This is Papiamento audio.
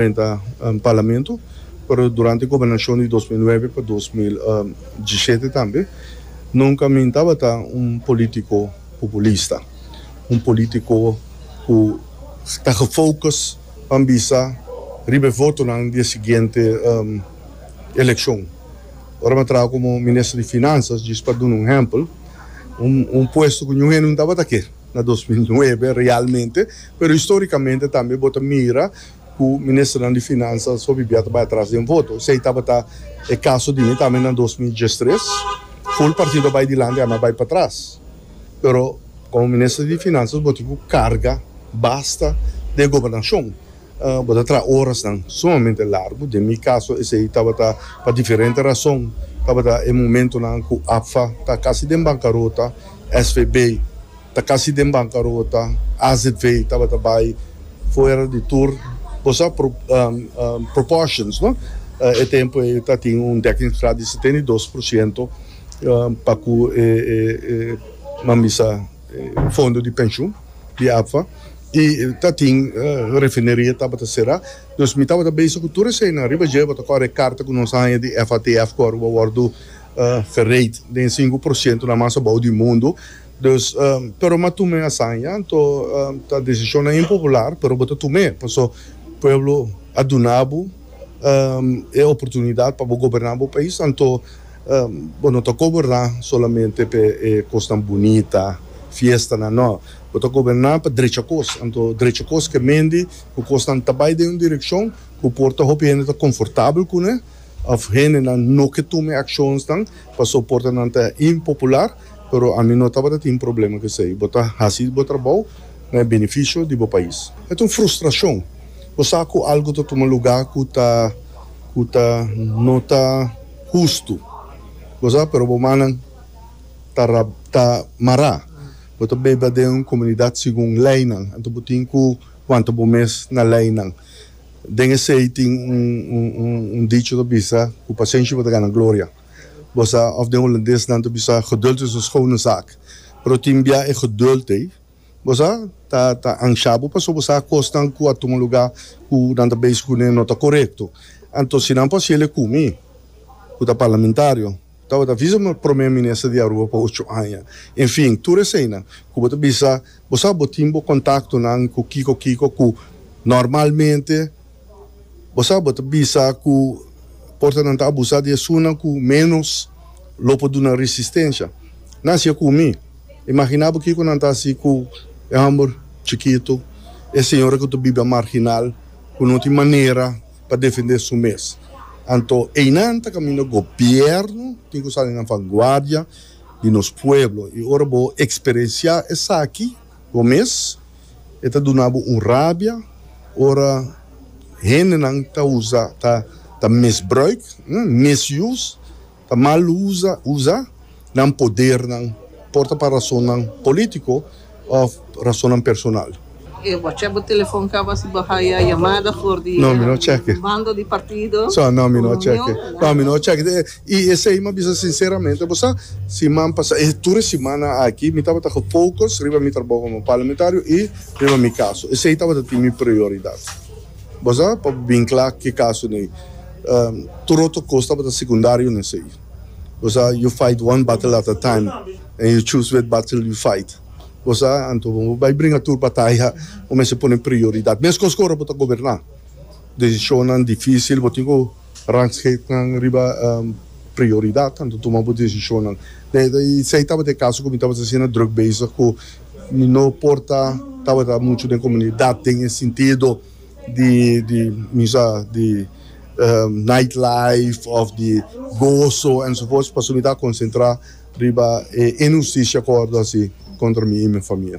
Menta Parlamento, pero durante e gobernacion di dos mil nuebe pa dos mil diesisiete tambe, nunca mi tabata un politico populista, un politico cu ta gefocus pa bisa riba e votonan di e siguiente eleccion. Ora mi a traha como Minister di Finanzas, djis pa duna un ehempel, un puesto cu niun hende no tabata kier na dos mil nuebe realmente, pero historicamente tambe bo ta mira. ku ministernan di finansa so bibia ta bai atras den voto. Esei tabata e kaso di mi tambe na dos mil diestres. Ful partido a bai dilanti, ami a bai patras. Pero komo minister di finansa bo tin ku karga basta den gobernashon. Bo ta traha orasnan sumamente largu. Den mi kaso esei tabata pa diferente rason. Tabata e momentunan ku APFA ta kasi den bankarota, svb. Ta casi den bancarota, azv tabata bay fuera di tur cosa proportions no, e tempo ey ta tin un dekkingsgraad di setenta i dos por ciento pa cu e mambisa fondo di pensioen di APFA y ta tin refineria tabata cera, dus mi tabata bezig cu tur eseynan, ariba dje bo ta cora e carta cu nos a haya di FATF cu a wordo verrijd den e cinco por ciento na mas abao di mundo. Dus pero m'a tum'é asaña, anto ta desishonnan impopular, pero bo ta tum'é, paso pueblo a duna bo e oportunidat pa bo goberná bo pais, anto bo no ta goberná solamente p'e e kosnan bunita, fiestanan, nò, bo ta goberná pa drecha kos, anto drecha kos ke mendi ku kosnan ta bai den un direkshon ku por ta hopi hende ta konfortabel kuné òf hendenan no ke tum'é akshonsnan paso por ta nan ta impopular. Pero ami no tabata tin problema cu esey. Bo ta haci bo trabou na e beneficio di bo pais. E ta un frustracion. Bo sa cu algo ta tuma lugar cu ta cu ta no ta hustu. Bo sa, pero bo mannan ta ra ta mara. Bo ta beba den un comunidad segun leynan. Anto bo tin cu wanta bo mes na leynan. Den esey tin un un un dicho ta bisa cu pacencia bo ta gana gloria. Bosa of den Holandes nan ta bisa geduld is een schone zaak. Pero tin bia e geduld ei bosa ta ta ansha bo paso bo sa kosnan ku a tuma luga ku nan ta bes ku ne no ta korekto. Anto si nan por hasiel e ku mi ku ta parlamentario tabata visa mi prome minister di Aruba pa ocho aña. Enfin tur eseinan ku bo ta bisa bo sa bo tin bo kontaktonan ku kiko kiko ku normalmente. Bo sa bo ta bisa ku por ta nan ta abusá di esunnan ku ménos lo por duna resistensia? Nan hasié ku mi. Imaginá bo kiko nan ta hasi ku e hòmber chikitu, e señora ku ta biba marginal, ku no tin manera pa defendé su mes. Anto einan ta kaminda gobièrnu tin ku sali na vanguardia di nos pueblo. I ora bo eksperensiá esaki. Bo mes e ta duna bo un rabia ora hendenan ta usa, ta ta misbruik, misuse, ta mal usa, usa nan podernan, por ta pa rasonnan polítiko òf rasonnan personal. E wacha bo telefòn kaba si bo haya yamada for di bando di partido, reunion, nada. I esei mi a bisa sinseramente bo sa, siman pasa, e tur e simana aki mi tabata ku focus riba mi trabou komo parlamentario i riba mi kaso. Esei tabata tin mi prioridat. Bo sa, pa bo bin kla ke kaso n'ei, tur otro kos tabata sekundario n'esei. Bo sa, you fight one battle at a time and you choose which battle you fight. Bo sa, anto bo bai bringa tur bataya, bo mester pone prioridat. Meskos ku ora bo ta goberná, desishonnan difísil bo tin ku. Rangskeetnan riba prioridad tantu tuma bo desishonnan. Esei tabata e kaso ku mi tabata asina druk bezig ku mi no por ta tabata muchu den komunidat den e sintido di di mi sa di night life òf di goso ensovoorts pasobra mi ta konsentrá riba e inhustisia ku a wòrdu hasi kontra mi i mi famia.